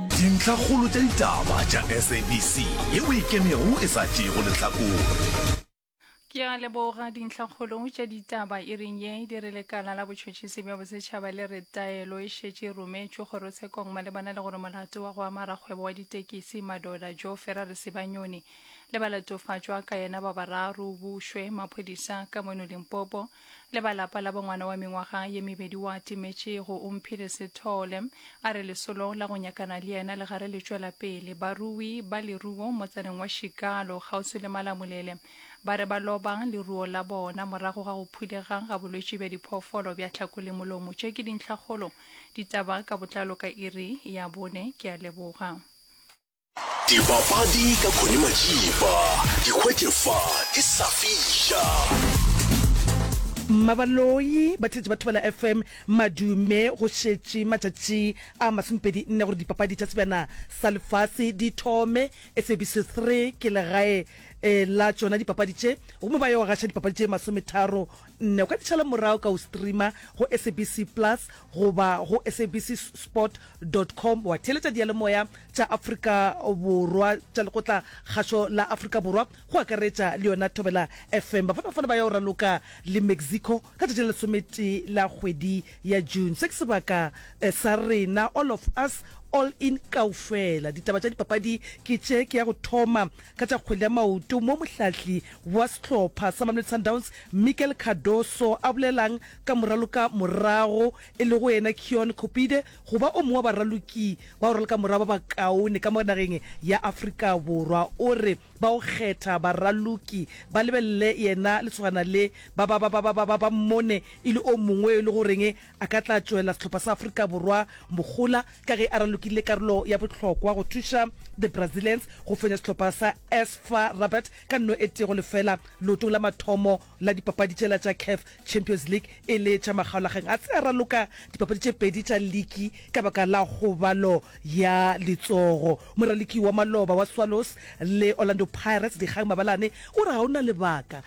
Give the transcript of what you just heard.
Dintlhakgolo tša ditaba tša SABC ye o e kenego e sa tšeego lehlakore. Ke a leboga dintlhakgolo tša ditaba iring ye. Di re lekala la botšhotšhisi bja bosetšhaba le re taelo e šetše e rometšwe kgorotshekong malebana le gore molato wa go ama rakgwebo wa ditekisi Madoda Joe Ferrari Sebanyoni le balatofatšwa ka yena ba bararo o bušwe maphodisa ka mono Limpopo Le ba lapa la bo ngwana wa mengwaga ye mebedi wa timetše go Umphile Sithole. A re lesolo la go nyakana le yena le gare le tšwela pele. Barui ba leruo motsaneng wa Shikalo kgauswi le Malamulele ba re ba loba leruo la bona morago ga go phulega ga bolwetši bja diphoofolo bja tlhako le molomo. Tše ke dintlhakgolo. Ditaba ka botlalo ka iri ya bone. Ke a leboga. Dipapadi ka Connie Matšipa, di hwetše fa ke sa fiša. Mmabaloi ba thetše ba thubela FM madume go šetše matšatši a masomepedi nne gore dipapadi tša sebjana sa lefase di thome. SABC 3 ke legae eh, la tšona dipapadi tše gomme ba yo gaša dipapadi tše masometharo Nne o ka di tšhala morago ka go streama go SABC Plus goba go sabcsport dot com wa theeletša diyalemoya tša Afrika Borwa tša lekgotla kgašo la Afrika Borwa go akaretša le yona Thobela FM. Bafanafana ba ya go raloka le Mexico ka tšatši la lesometee la kgwedi ya June. Se ke sebaka eh, sa rena, all of us, all in kaufela. Ditaba tša dipapadi ke tše, ke ya go thoma Ka tša kgwele ya maoto mo mohlahli wa sehlopha sa Mamelodi Sundowns Mikel Cardoso a bolelang ka moraloka morago e lego yena Keon Kopide go ba o mongwe wa baraloki ba boraloka morago ba bakaone ka mo nageng ya Afrika Borwa o re ba o kgetha baraloki ba lebelele yena lesogana le ba ba ba ba ba ba ba mmone e le o mongwe yo e lego goreng A ka tla tšwela sehlopha sa Afrika Borwa mogola ka ge a ralokile karolo ya bohlokwa go thuša The Brazilians go fenya sehlopha sa AS FAR Rabat ka nno e tee go lefela leotong la mathomo la dipapadi tšela tša CAF Champions League e le tša makgaolakgang. A se a raloka dipapadi tše pedi tša liki ka baka la kgobalo ya letsogo. Moraloki wa maloba wa Swallows le Orlando Pirates, Dikgang Mabalane, o re ga o na lebaka